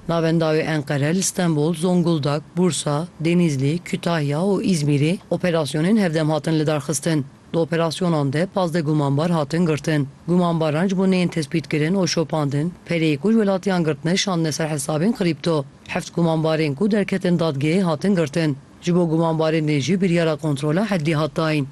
Navenda wê Enqere li Stenbol, Zonguldak, Bursa, Denîzli, Kütahya û Îzmîrê operasyonên hevdem hatin lidarxistin. Di operasyonan de pazdeh gumanbar hatin girtin. Gumanbaran ji bo neyên tespîtkirin û şopandin, pereyê ku ji welatiyan girtine şandine ser hesabên krîpto. Heft gumanbarên ku derketin dadgehê hatin girtin. Ji bo gumanbarên din jî biryara kontrola heddî hat dayîn.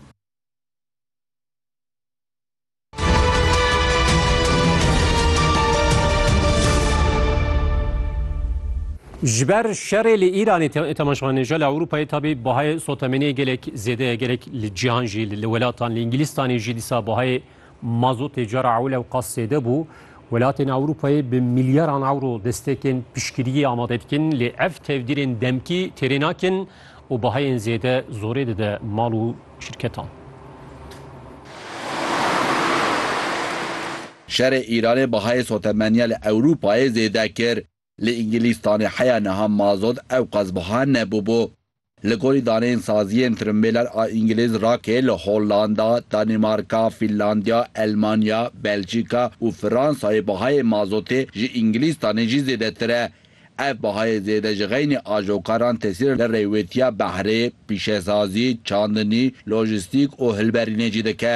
Ji ber şerê li Îranê temaşvanê ji li Ewropayê tabî bahayê sotemeniyê gelek zêde ye gelek li cîhan jî li welatan li Îngilîstanê jî dîsa bahayê Mazotê cara ewil ew qas zêde bû. Welatên Ewropayê bi milyaran ewro destekên piştgiriyê amade dikin lê ev tevdîrên demkî têrê nakin û bahayên zêde zorê dide mal û şirketan. Şerê Îranê bahayê sotemeniya li Ewropayê zêde kir. Li Îngilîztanê heya niha mazot ewqas buha nebûbû. Li gorî daneyên saziyên tirimbêler a îngilîz rakê li Hollanda, Danîmarka, Fînlandya, Elmanya, Belçîka û Fransayê bihayê mazotê ji Îngilîztanê jî zêdetir e. Ev bihayê zêde ji xeynî ajokaran tesîr li rêwêtiya behrê, pîşesazî, çandinî, lojîstîk û hilberînê jî dike.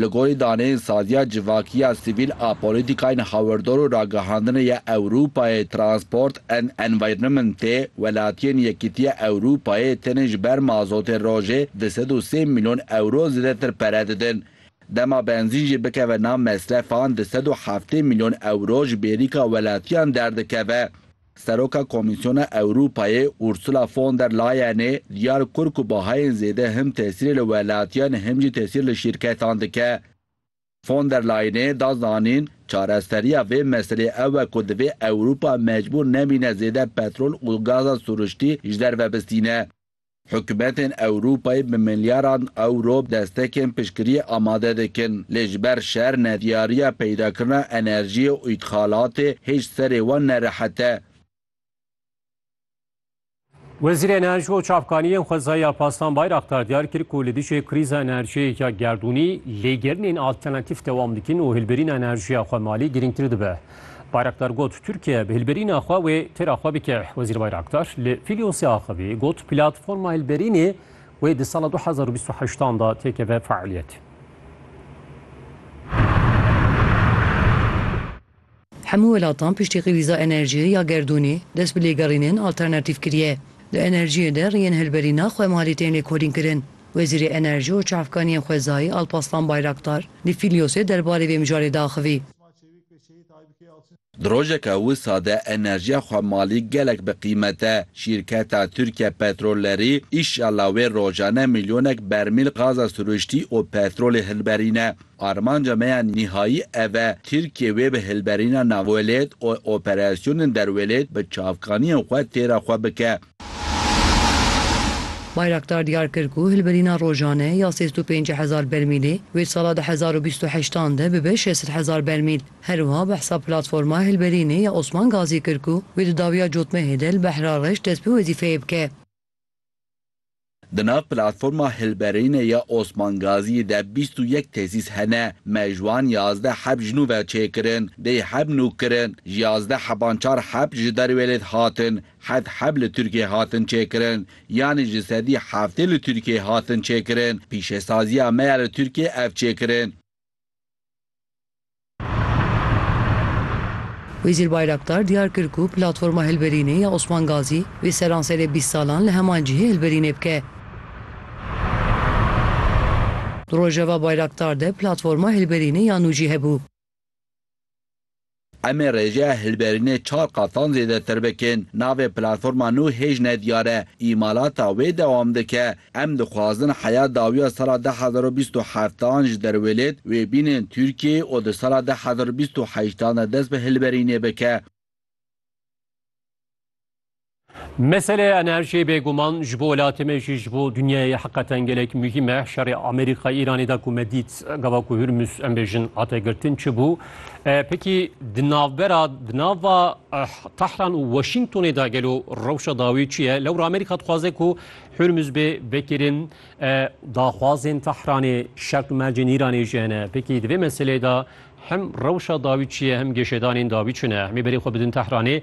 Li gorî daneyên saziya civakî ya sivîl a polîtîkayên hawirdor û ragihandinê ya Ewropayê, Transport and Environmentê, welatiyên Yekîtiya Ewropayê tenê ji ber mazotê rojê di sed û sê milyon ewro zêdetir pere didin. Dema benzîn jî bikeve nav mesrefan di sed û heftê milyon ewro ji bêrîka welatiyan derdikeve. Seroka Komîsyona Ewropayê Ursula von der Leyenê diyar kir ku bahayên zêde him tesîrê li welatiyan him jî tesîr li şîrketan dike. Von der Leyenê da zanîn, çareseriya vê meseleyê ew e ku divê Ewropa mecbûr nebîne zêde petrol û gaza sûriştî ji derve bistîne. Hikûmetên Ewropayê bi milyaran ewro destekên piştgiriyê amade dikin, lê ji ber şer, nediyariya peydakirina enerjiyê û îtxalatê hêj serê wan nerehet e. Wezîrê Enerji û Çavkaniyên Xwezayî Alparslan Bayraktar diyar kir ku li dijî krîza enerjiyê ya gerdûnî lêgerînên alternatîf dewam dikin û hilbirîna enerjiya xwemalî girîngtir dibe. Bayraktar got Tirkiye bi hilberîna xwe wê têra xwe bike. Wezîr Bayraktar li Fîlyosê axivî got platforma hilberînê wê di sala du hezar û bîst û heşt an da têkeve fealiyetê. Hemû welatan piştî krîza enerjiyê ya gerdûnê dest bi lêgerînên alternatîf kiriye. Di enerjiyê de rêyên hilberîna xwe malê tên lêkolînkirin. Wezîrê Enerjî û Çavkaniyên Xwezayî Alpaslan Bayraktar li Fîlyosê derbarê vê mijarê diaxivî. Di rojeke wisa de enerjiya xwe malî gelek bi qîmet e. Şîrketa Tirke Petrollerî îşealla wê rojane milyonek bermîl gaza sirûştî û petrolê hilberîne. Armanca me ya nîhayî ev e, Tirkiye wê bi hilberîna navwelêt û operasyonên derwelêt bi çavkaniyên xwe têra xwe bike. Bayraktar diyar kir ku hilbirîna rojane ya sêz û pêncî hezar bermîlê wê sala du hezar û bîst û heşt an de bibe şeş sed hezar bermîl. Herwiha behsa platforma hilberînê ya Osman Gazî kir ku wê di dawiya cotmehê de li Behra Reş dest bi wezîfeyê bike. Di nav platforma hilberînê ya Osman Gaziyê de bîst û yek tesîs hene. Me ji wan yazdeh heb ji nû ve çêkirin, dêy heb nû kirin. Ji yazdeh heban çar heb ji derwêlêd hatin, heft heb li Tirkiyê hatin çêkirin. Yanî ji sedî heftê li Tirkiyê hatin çêkirin. Pîşesaziya me ya li Tirkiyê ev çêkirin. Wezîr Bayraktar diyar kir ku Platforma Hilberînê ya Osman Gazî vê seranserê bîst salan li heman cihê hilberînê bike. Di rojeva Bayraktar de Platforma Hilberînê ya nû jî hebû. Em ê rêjeya hilberînê çar qatan zêdetir bikin. Navê platforma nû hêj nediyar e. Îmalata wê dewam dike, Em dixwazin heya dawiya sala du hezar û bîst û heft an ji derwêlêt wê bînin Tirkiyeyê û di sala du hezar û bîst û heşt an de dest bi hilberînê bike. Meseleya enerjiyê bêguman ji bo welatê me jî ji bo dinyayê heqeten gelek muhîm e. Şerê Amerîka Îranê de ku me dît gava ku Hurmûs em bêjin hate girtin çi bû? Pekî di navbera di nava Tehran û Washingtonê de gelo rewşa dawî çi ye? Lewra Amerîka dixwaze ku Hurmûs bê vekirin daxwazên Tehranê şert û mercên Îranê jî hene. Pekî di vê meseleyê de hem rewşa dawî çi ye hem geşedanên dawî çi ne? Hemî berê xwe bidin Tehranê.